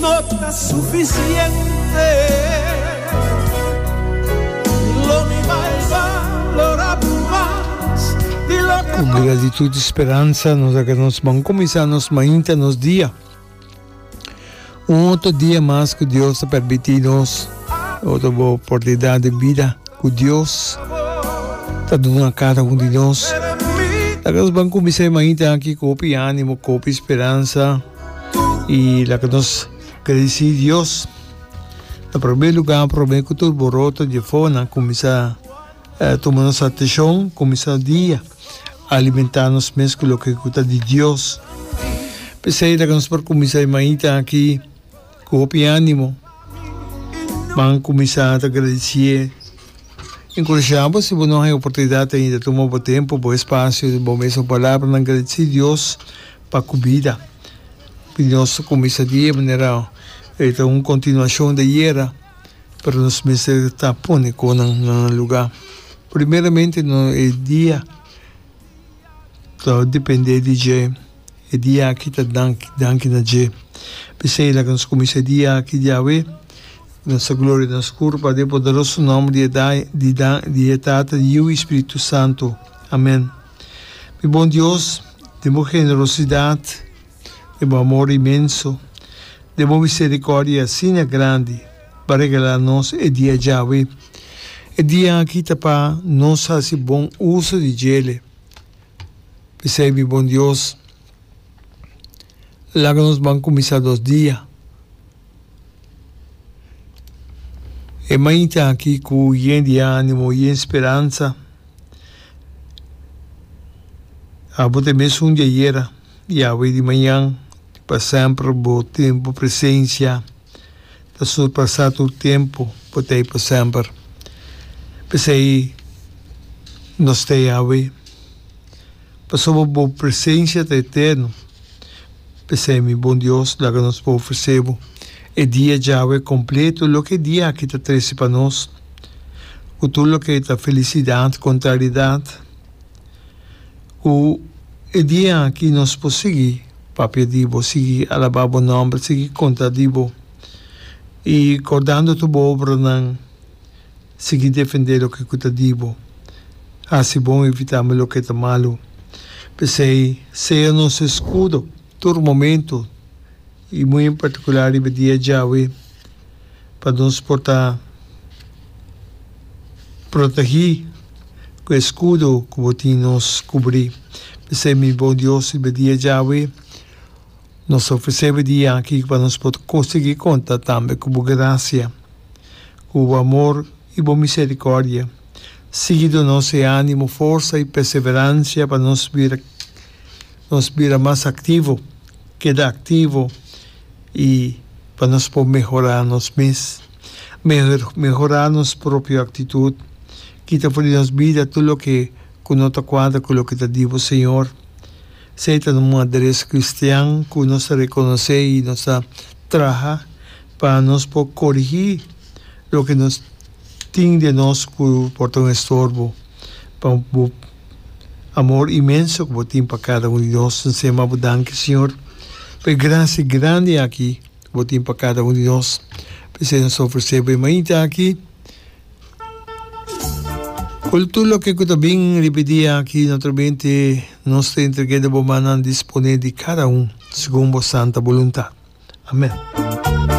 No ta sufisiente lo mi mai valora bu mas di lo ke. Con gratitud y speransa nos a keda nos ban cuminsa nos mainta nos dia. Un otro dia mas cu Dios ta permiti nos otro oportunidad di bida cu Dios ta duna cara hundir nos. Nos a keda nos ban cuminsa e mainta aki cu hopi animo cu hopi speransa. Y laga nos gradeci Dios na prome lugar prome cu tur boroto di efonan cuminsa tuma nos atencion cuminsa dia alimenta nos mes cu loke cu ta di Dios p'esey laga nos por cuminsa e mainta aki cu hopi animo ban cuminsa ta gradecié encurashá bo si bo no hay oportunidad ainda tuma bo tempo bo espacio di bo mes un palabranan gradeci Dios Pa kumida. Nos ta kuminsá di e manera e ta un kontinuashon di ayera, pero nos mester ta pone kos nan na nan lugá. Primeramente no e dia ta dependé di dje, e dia aki ta danki, danki na dje. P'esei laga nos kuminsá e dia aki di Yahweh, nos ta gloria na nos Kur pa de poderoso nòmber di e di e Tata, di Yiu i Spiritu Santu. Amèn. Mi bon Dios, den bo generosidat, den bo amor inmenso, den bo misericordia asina grandi, bo a regala nos e dia djawe. E dia aki ta pa nos hasi bon uso di djele. P'esei, mi bon Dios. laga nos ban kuminsá dos dia. E mañita aki ku yen di ánimo, yen speransa, abo ta e mes un di ayera, Yahwe di mañan, di pa semper, bo tin bo presensia ta surpasá tur tempu, bo ta ei pa semper. P'esei nos ta Yahwe. Pasobra bo presencia ta eterno, p'esei mi bon Dios, laga nos por ofrece bo e dia djawe completo loke e dia aki ta trece pa nos, cu tur loke ta felicidad, contrariedad, cu e dia aki nos por sigui papia di bo, sigui alaba bo nomber, sigui conta di bo, y cordando tur bo obranan. Sigui defendé loke ku ta di bo. Hasi bon i evitá mi loke ta malu. P'esei, sea nos eskudo tur momentu, i muy en partikular riba dia djawe, pa nos por ta protegí ku e eskudo ku bo tin nos. Kubrí, p'esei, mi Bon Dios, riba dia djawe. Nos ta ofresebe di aki pa nos por ko sigui konta tambe ku bo grasia, ku bo amor i bo miserikòrdia. Sigui donos e ánimo, forsa i perseveransia pa nos bira nos bira mas aktivo, keda aktivo i pa nos por mehorá nos mes. Meho mehorá nos propio aktitut, kita for di nos bida tur loke ku no ta kuadra ku loke ta di bo, Señor. Sei ta un madres cristian cu nos ta reconoce y nos ta traha pa nos por corigi loke nos tin den nos cu por ta un estorbo pa bo amor inmenso cu bo tin pa cada un di nos. Bo siempre a bo danki Señor pa e gracia grandi aki cu bo tin pa cada un di nos. P'esei nos ta ofrece bo e mainta aki. Cul tur loke cu ta bin riba e dia aki, naturalmente nos ta entrega e na bo mannan disponé di cada un segun bo santa boluntad. Amen.